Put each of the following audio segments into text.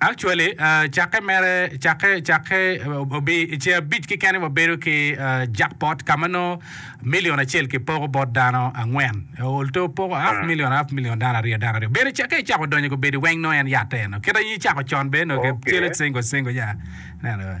Actually cakke mere cakke cakke obi i ce abic keken wabedo ki jackpot ka ma nongo million acel ki poko bot dano angwen although opoko half million half million dano aryo dano aryo bene cakke i cako donyo gubedi weng nongo en yatte eno kit aye cako con bene nongo ki cele single single ya neno.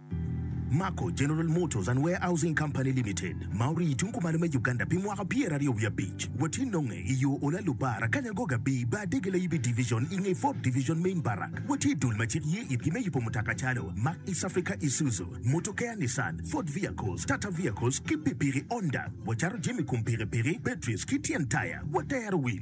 Mako General Motors and Warehousing Company Limited ma orii tung kumalo me Uganda pi mwaka pyeraryo wiye abic watye nonge i yo Ola Lubar Akanya Goga Bii Bar Dege Layibi Division i nge Ford Division Main Barrack watye dul ma cik ye itgi me yubo mutoka calo Mack East Africa Isuzu Motokea Nissan Ford Vehicles Tata Vehicles ki pikipiki Honda wacato jami kum pikipiki batteries ki tyen taya watero wil